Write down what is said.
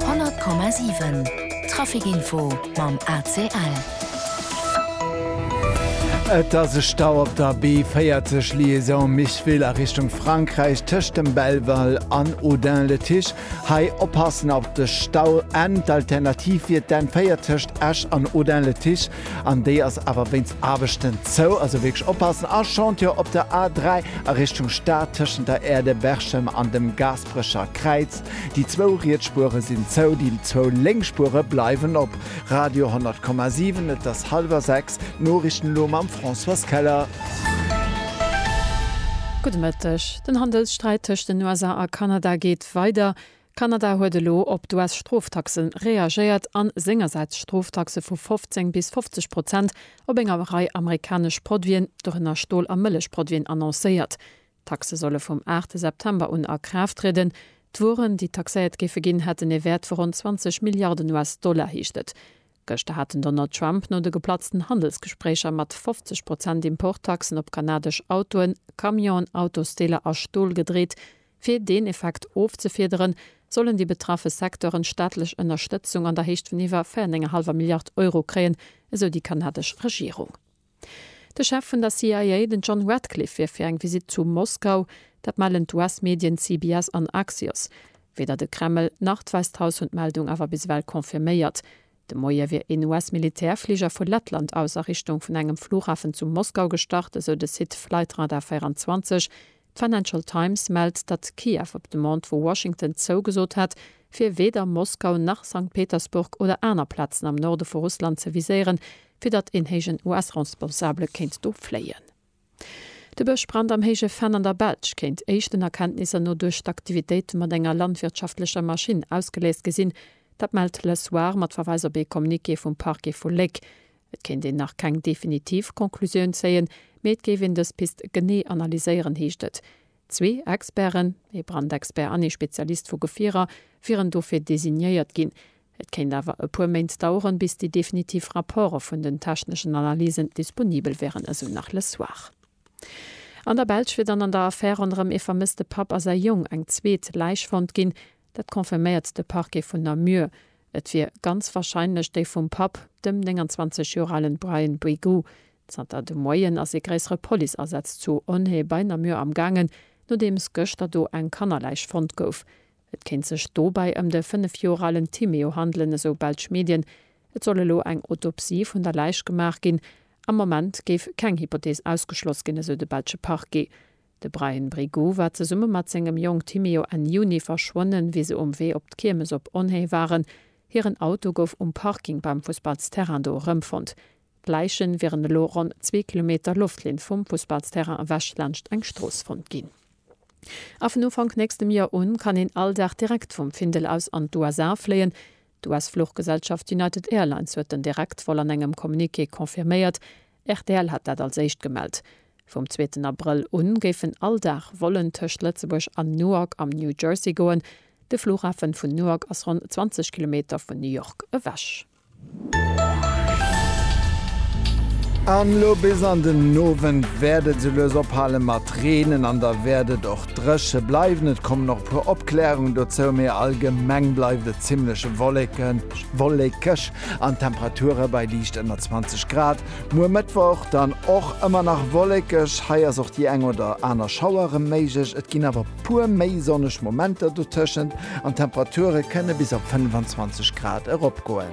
100,7 Trafic Info mam ACL. Et ass e Stau op der B40 Liaison Micheville a Richtung Frankräich tëscht dem Belval an Audun-le-Tiche. Hei oppassen op de Stau. N d'Alternativ wier d'N4 tëscht Esch an Audun-le-Tiche an déi ass awer wéinst Aarbechten zou. Also wierklech oppassen. A Chantier op der A3 a Richtung Stad tëschent der Aire de Berchem an dem Gaz. D'Frëscher Kräiz, Déi zwou Rietspure sinn zou, déi zwou lénk Spure bleiwen op. Radio 100,7, Et ass hallwer sechs, d'Noriichten elo mam Françoise Keller. Gudde Mëtteg. Den Handelssträit tëscht den USA a Kanada geet weider. Kanada huet elo op d'US-Stroftaxe reagéiert a sengersäits Stroftaxe vu 15 bis 50 Prozent op enger Rei amerikanesch Produiten, dorënner Stol a Mëllechproduiten, annoncéiert. D'Taxe solle vum aachte September un a Kraaft trieden. D'Wueren, déi taxéiert géife ginn, hätten ee Wäert vu ronn 20 Milliarden US-Dollar, heescht et. Gëschter hat den Donald Trump no de geplatzten Handelsgespréicher mat 50 Prozent Importtaxen op kanadesch Autoen, Camionen, Autosdeeler a Stol gedreet. Fir deen Effekt ofzefiederen, sollen déi betraffe Secteuren staatlech Ënnerstëtzung an der Héicht vun iwwer 4,5 Milliard Euro kréien, esou déi kanadesch Regierung. De Chef vun der CIA, den John Ratcliffe, wier fir eng Visitt zu Moskau. Dat mellen d'US-Medien CBS an Axios. Weder de Kreml nach d'Wäisst Haus hunn d'Meldung awer bis ewell confirméiert. De Moie wier een US-Militärfliger vu Lettland aus a Richtung vun engem Flughafen zu Moskau gestart, esou de Site Flightradar 24. D'Financial Times mellt, datt Kiew op Demande vu Washington zougesot hat, fir weder Moskau nach Sankt Petersburg oder aner Plazen am Norde vu Russland ze viséieren, fir datt een héijen US-Responsabele kéint do fléien. De Bëschbrand am Héije Venn an der Belsch kéint éischten Erkenntnisser no duerch d'Aktivitéite mat enger landwirtschaftlecher Maschinn ausgeléist gi sinn. Dat mellt Le Soir mat Verweis op ee Communiqué vum Parquet vu Léck. Et kéint een nach keng definitiv Conclusioun zéien, mee et géif een dës Pist genee analyséieren, heescht et. Zwee Experten, ee Brandexpert an ee Spezialist vu Gefierer, wieren dofir designéiert ginn. Et kéint awer e puer Méint daueren, bis déi definitiv Rapporte vun den techneschen Analysen disponibel wären, esou nach Le Soir. An der Belsch wier dann an der Affär ronderëm ee vermësste Papp a säi Jong eng zweet Läich fonnt ginn. Dat confirméiert de Parquet vun Namur. Et wier ganz warscheinlech déi vum Papp, dem 29 Joer alen Brian Brigoux. Zanter de Moien ass ee gréissere Policeasaz zu Onhaye bei Namur am gaangen, nodeems gëschter do eng Kannerläich fonnt gouf. Et kéint sech dobäi ëm de 5 Joer alen Timéo handelen, esou belsch Medien. Et soll elo eng Autopsie vun der Läich gemaach ginn. Am Moment géif keng Hypothees ausgeschloss ginn, esou de belsche Parquet. De Bryan Brigoux war zesumme mat sengem Jong Timeo Enn Juni verschwonnen, wéi se um Wee op d'Kiermes op Onhé waren. Hiren Auto gouf um Parking beim Fussballsterrain do erëmfonnt. D'Läiche wieren elo ronn zwee Kilometer Loftlinn vum Fussballsterrain ewech laanscht eng Strooss fonnt ginn. A vun Ufank nächstem Joer un kann een all Dag direkt vum Findel aus an d'USA fléien. D'US-Fluchgesellschaft United Airlines huet den Direktvol an engem Communiqué confirméiert. Rtl hat dat als éischt gemellt. Vum zweeten Abrëll u géifen all Dag Vollen tëscht Lëtzebuerg an Newark am New Jersey goen. De Flughafen vun Newark ass ronn 20 Kilometer vun New York ewech. An elo bis an den Owend wäert et esouloues ophale mat reenen an da wäert et och dréche bleiwen. Et kommen och e puer Opkläerungen dozou, mee allgemeng bleift et zimmlech wollekeg. An d'Temperature bei liicht ënner 20 Grad. Muer Mëttwoch dann och ëmmer nach wollekeg, hei ass och déi eng oder aner Schauer rem méiglech. Et ginn awer puer méi sonneg Momenter dotëschent an d'Temperature kënne bis op 25 Grad eropgoen.